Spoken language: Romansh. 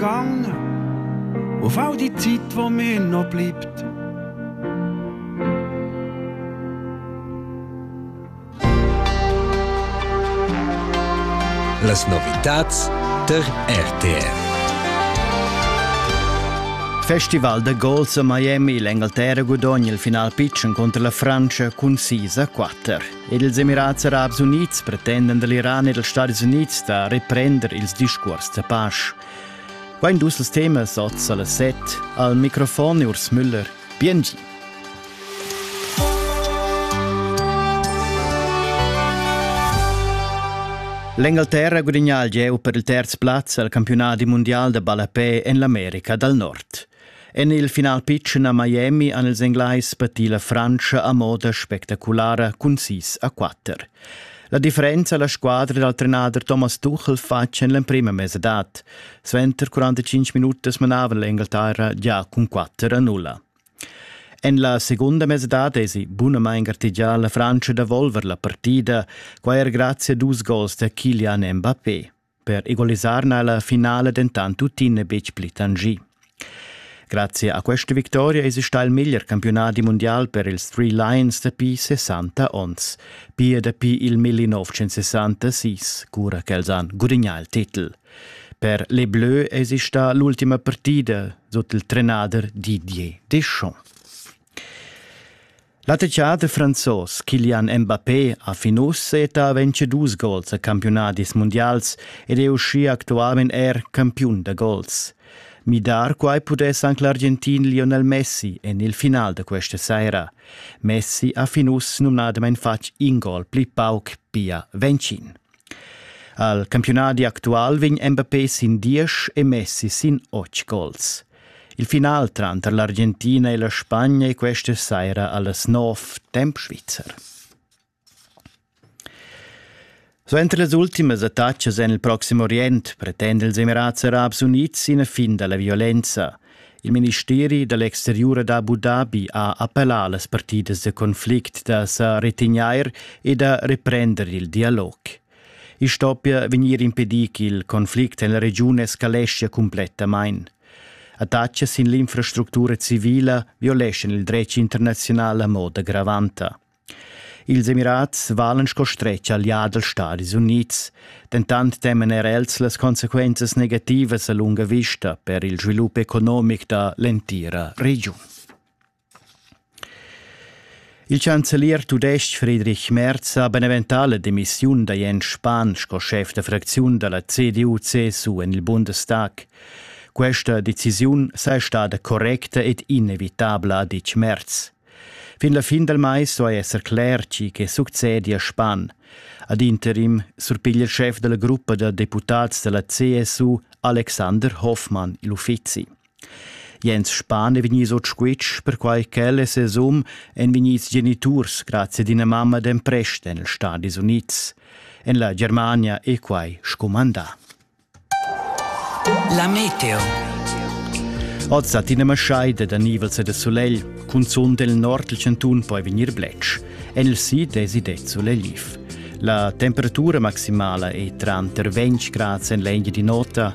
Gang, o fau die Zeit, wo mir noch bleibt. Las novitats ter RTR. Festival de golf a Miami, l'Angleterra gudogna il final pitschen contro la Francia cun 6 a 4. Ils Emirats Arabs Unids pretendan dall'Iran e dals Stadis Unids da reprender ils discuors da pasch. Quai dus els temas oz alla set al microfon Urs Müller. Biengi. L'Engalterra gudigna il gieu per il terz plaz al campionat mundial da ballapè en l'America dal Nord. En il final pitschen a Miami han ils Englais patì la Frantscha a moda spectaculara cun sis a quatter. La differenza la squadra dal trenader Thomas Tuchel fatg en l'emprima mesadad. Suenter 45 minutas manava l'Engalterra già cun 4 a 0. En la segunda mesadad esi bunamain gartegià la Frantscha da volver la partida, quai er grazie a dus gols da Kilian Mbappé. Per egalisar n'ha la finala dentant tuttina betg pli tangì. Grazie a questa vittoria è stà il miglior campionat mondial per ils Three Lions dapi 60 onns, pia dapi il 1966, cura ch'els han gudagnà il titel. Per les Bleus è stata l'ultima partida sut il trenader Didier Deschamps. La teater franzos Kylian Mbappé ha fin uss settà ventg gols a campiunadis mundials ed è uschia actualmain er campiun da gols. Midar quai pudess anc l'Argentin Lionel Messi en il final da questa saira. Messi ha fin uss numnadamain fatg in gol pli pauc pia Vencin. Al campiunadi actual vegn Mbappé sin diesch e Messi sin otg gols. Il final tranter l'Argentina e la Spagna è questa saira allas nov temp svizzer. Suenter las ultimas attacas en il Proxim Orient pretende ils Emirats Arabs Unids ina fin da la violenza. Il ministeri dall'exteriur Abu Dhabi ha appellà las partidas de conflict da sa retegnair e da reprender il dialog. I stoppia vegnir impedì ch'il conflict en la regiun escaleschia cumplettamain. Attachas sin l'infrastructura civila violeschan il dretg internaziunal a moda gravanta. Ils Emirats valen sco stretg allià dals Stadis Unids, dentant teman er els las consequenzas negativas a lunga vista per il svilup economic da l'entira regiun. Il chancelier tudestg Friedrich Merz ha beneventà la demissiun da Jens Spahn sco schef da fracziun da la CDU-CSU en il Bundestag. Questa decisiun saja stada correcta ed inevitabla, ha ditg Merz. Fin la fin dal mais duai esser cler tgi che succedia Spahn. Ad interim surpiglia il schef da la gruppa da deputads da la CSU Alexander Hoffmann il uffizi. Jens Spahn è vegnius ord squitsch, perquai ch'el e ses um èn vegnids geniturs grazie ad ina mamma d'emprest en ils Stadis Unids. En la Germania è quai scumandà. La meteo. Oz dat ina maschaida da nivels e da sulegl, cunzunt il nord il chantun poi vegnir bletsch. En il sid èsi det sulegliv. La temperatura maximala è tranter 20 grad en l'engia di nota